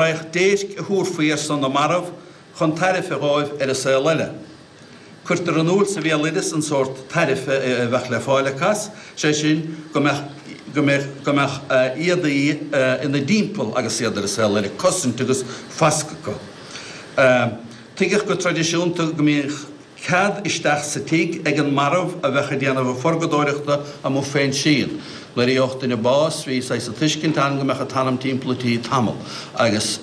Bheadh déirc a thabharfaí ar son na marbh chun tairbhe dhóibh ar an saol eile. Cuirtear in iúl sa bhéaloideas an sórt tairbhe a bheadh le fáil acu as, sé sin, go mbeadh éadaí ina dtimpeall agus iad ar an saol eile, cosaint agus fascadh acu. Tuigeadh go traidisiúnta go mbíodh. Cead isteach sa tigh ag an marbh a bheadh ag déanamh a phurgadóireachta amuigh fén síon. Nuair a gheobhadh duine bás, bhí saghas tuiscint ann go mbeadh an t-anam timpeall an tí tamall, agus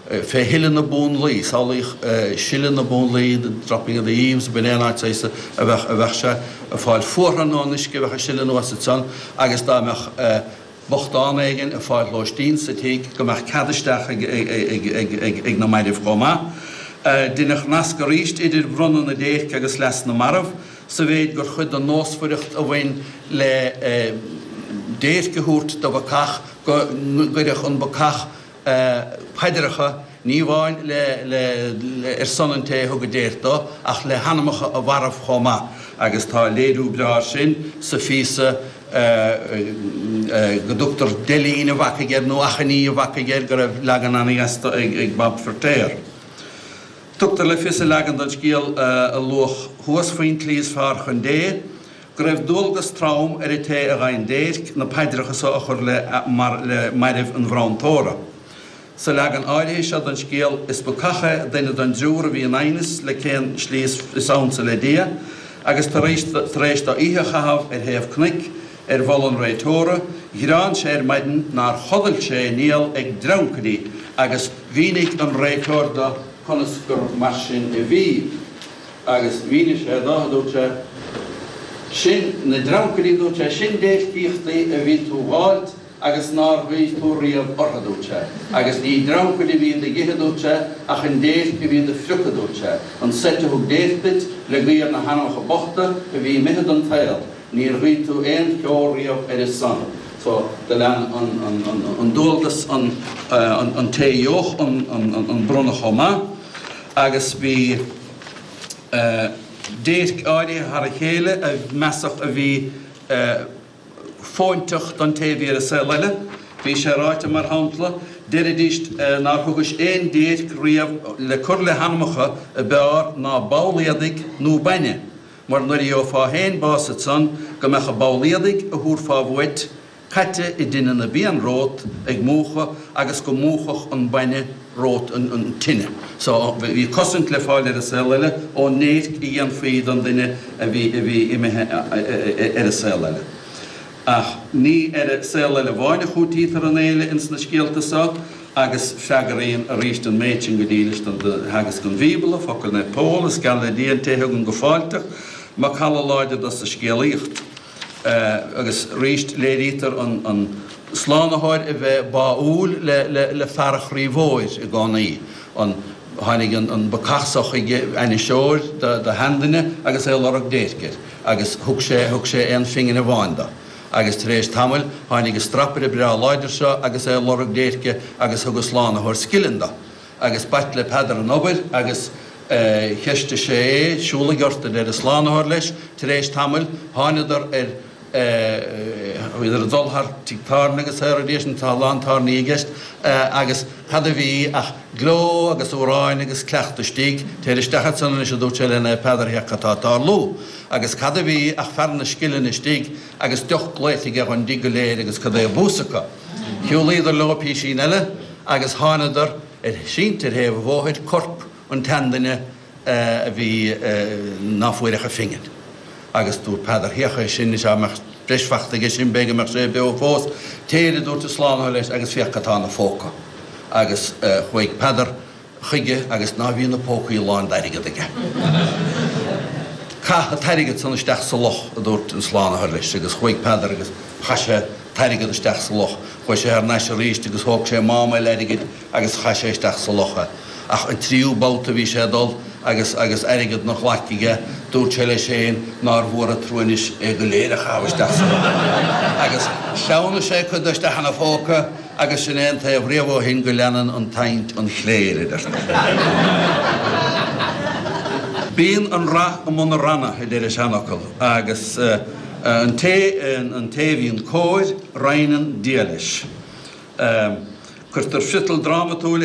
fé shileadh na bunlaí, samhlaíodh sileadh na bunlaí, the dropping of the eaves, b'in aon áit, is dócha, bheadh sé ag fáil fothana ón uisce a bheadh ag sileadh anuas ansan, agus dá mbeadh bochtán éigin ag fáil lóistín sa tigh go mbeadh cead isteach ag na mairbh chomh maith. Deineadh nasc arís idir bronnadh na déirce agus leas na marbh, sa mhéid gur chuid den nósmhaireacht a bhain le déirc a thabhairt do bhacach go gcuirfeadh an bacach, paidreacha, ní amháin ar son an té a thug an déirc dó, ach le hanamacha a mharbh chomh maith, agus tá léiriú breá air sin sa phíosa go dtugtar 'deilín an bhacaigh' air, nó 'achainí an bhacaigh' air, go raibh leagan an-dheas de ag Bab Feiritéar. Tugtar le fios i leagan den scéal a luadh thuas faoin tslí is fearr chun Dé, go raibh dualgas trom ar an té a gheibheann déirc na paidreacha so a chur le mairbh an bhronntóra. Sa leagan áirithe seo den scéal, is bacach é, duine den dtriúr a bhí in aighneas le cén slí is ansa le Dia, agus tar éis do oíche a chaitheamh ar thaobh cnoic, ar mholadh an réiteora, ghearán sé ar maidin nár chodail sé aon néal ag dreancaidí, agus mhínigh an réiteoir do conas gur mar sin a bhí. agus mhínigh sé dó, a dúirt sé, Sin na dreancaidí, a dúirt sé, sin déircíochtaí a bhí tú a fháil agus nár ghuigh tú riamh orthu, a dúirt sé, agus ní dreancaid a bhí do d'ithe, a dúirt sé, ach an déirc a bhí do do phriocadh, a dúirt sé, an tseift a thug déirc duit le guí ar na hanamacha bochta a bhí imithe den tsaol, níor ghuigh tú aon cheo riamh ar a son. So, do lean an dualgas an té a gheobhadh an bronntanas chomh maith. agus bhí déirc áirithe thar a chéile a measadh a bhí fóinteach don té a bhí ar an saol eile. Bhí sé ráite, mar shampla, deiridíst nár thugais aon déirc riamh le cur le hanamacha ab fhearr ná ball éadaigh nó bainne, mar nuair a gheofá féin bás iad san, go mbeadh an ball éadaigh a thabharfá uait, caite i dtine na bpian romhat ag múchadh agus go múchfadh an bainne romhat an tine so bhí cosaint le fáil ar an saol eile ón ndéirc a dhéanfaí don duine a bhí imithe ar an saol eile. Ach ní ar an saol eile amháin a chúitítear an fhéile ins na scéalta so agus freagraíonn arís an méid sin go dílis do theagasc an Bhíobla, focail Naomh Pól, Is geal le Dia an té a thugann go fáilteach macalla láidir do sa scéalaíocht. Agus arís, léirítear an Slánaitheoir a bheith báúil le fear an chroí mhóir i gcónaí. Tháinig an bacach so chuige, ainniseoir de sheanduine agus é ag lorg déirce, agus thug sé aon phingin amháin do. Agus tar éis tamaill, tháinig an Strapaire breá láidir seo agus é ag lorg déirce, agus thug an Slánaitheoir scilling do. agus b'ait le Peadar an obair agus cheistigh sé é. Siúlaigh ort, arsa an slánaitheoir leis. Tar éis tamaill thángadar ar, bhíodar ag dul thar tigh tábhairne agus sea arís, nó tá a lán tábhairní i gceist, agus cad a bhí ach gleo agus amhráin agus cuileachta istigh. Téir isteach ansan anois, a dúirt sé le Naomh Peadar, féach cad tá ag tarlú. Agus cad a bhí ach fear na scillinge istigh. agus deoch glaoite aige dhon dtigh go léir agus cad é a bús acu. Shiúlaíodar leo písín eile agus thángadar ar, sínte ar thaobh an bhóthair corp an tseanduine a bhí ná fuair ach an phingin. Agus dúirt Peadar, Thiocfadh é sin, is dá mbeadh breis fachta aige sin, b'fhéidir go mbeadh sé beo fós. Téir, a dúirt an Slánaitheoir leis, agus féach cad tá ina phóca. Agus chuaigh Peadar. chuige agus ná bhí na pócaí lán d'airgead aige. Caith an t-airgead san isteach sa loch, a dúirt an Slánaitheoir leis, agus chuaigh Peadar agus chaith sé an t-airgead isteach sa loch. Chuaigh sé thar n-ais arís agus thóg sé mám eile airgid agus chaith sé isteach sa loch é. Ach an tríú babhta bhí sé ag dul agus agus airgead ina ghlaic aige, dúirt sé leis féin, nár mhór an trua anois é go léir a chaitheamh isteach sa loch. Agus shleamhnaigh sé cuid de isteach ina phóca, Agus sin é an taobh riamh ó shin go leanann an tsaint an chléir, a deirtear. Bíonn an rath i mbun na ronna, a deir an seanfhocal, agus an té an té a bhíonn cóir, roinneann Dia leis. Cuirtear friotal drámatúil ar